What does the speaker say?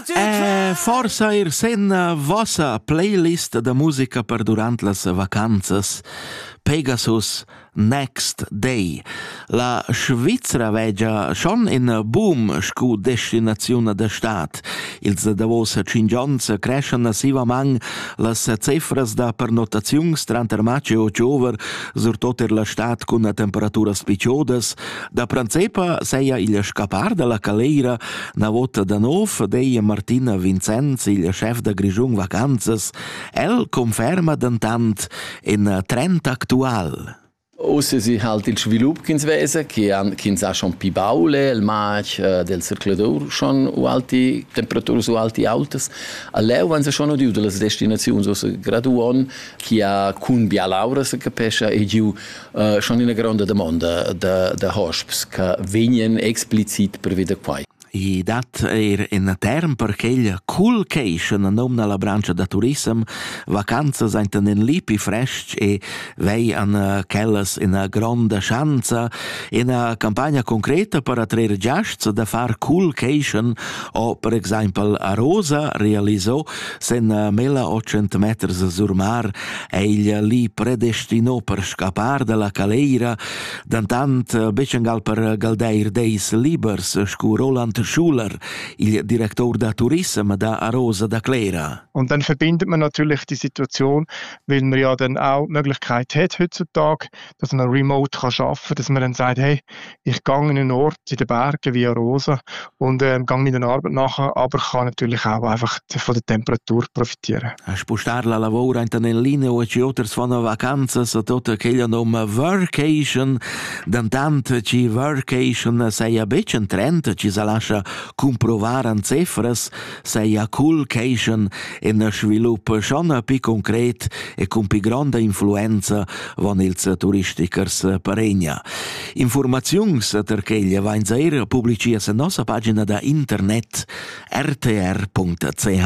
Eh, forsa er sen vossa playlist da musica per durant las vacanzas. Pegasus Next Day. La Svizzera vegia schon in boom scu destinaziun da stat. Ils davos cinc onns creschan massivament las cifras da pernotaziuns tranter maggio e october, surtot er la stat cun temperaturas picciodas. Da principa seia il scappar dalla caleira Na vota da nov deia Martina Vincenz, il chef da Grischun Vacanzas, el conferma dentant in trend actual. Oz si halt il svilup ch'ins vesa, che ch'ins ha schon pi baule, il matg äh, del circulator schon u alti temperaturas u alti autas. A leu han se schon udiu dalle destinaziuns, os graduon, chi ha cun bia laura se capescha e giu schon ina gronda domanda da, da hosps che vegnan explicit prevede quai. I dat eir in term per quel coolcation a nom la brancia da turism, vacanzas ainten in lipi fresc e vei an eh, quellas ina gronda schanza, ina campagna concreta per attrair giasts da far coolcation o per exaimpel a Rosa realiso Senna mella otschent meters a Surmar è igl li predestino per scappar dalla caleira, dentant betg angal per galdeir deis libers, scu Roland Schuler, il director da turism da Arosa da Clera. Und dann verbindet man natürlich die Situation, weil man ja dann auch die Möglichkeit hat heutzutage, dass man remote kann arbeiten kann, dass man dann sagt, hey, ich gang in einen Ort in den Bergen wie Arosa und ähm, gehe meiner Arbeit nach, aber kann natürlich auch einfach von der Temperatur profitieren. Hast du star la lavora in nel linea o ci oters von vacanzas tot aquella noma workation, dann tant ci workation sei a becen trenta ci sa lascia comprovar an cifras, seia cul queixan e na sviluppa schon pi concret e cun pi gronda influenza van ils turistichers paregna. Informaziuns ter queglia vains eir publicias en nossa pagina da internet rtr.ch.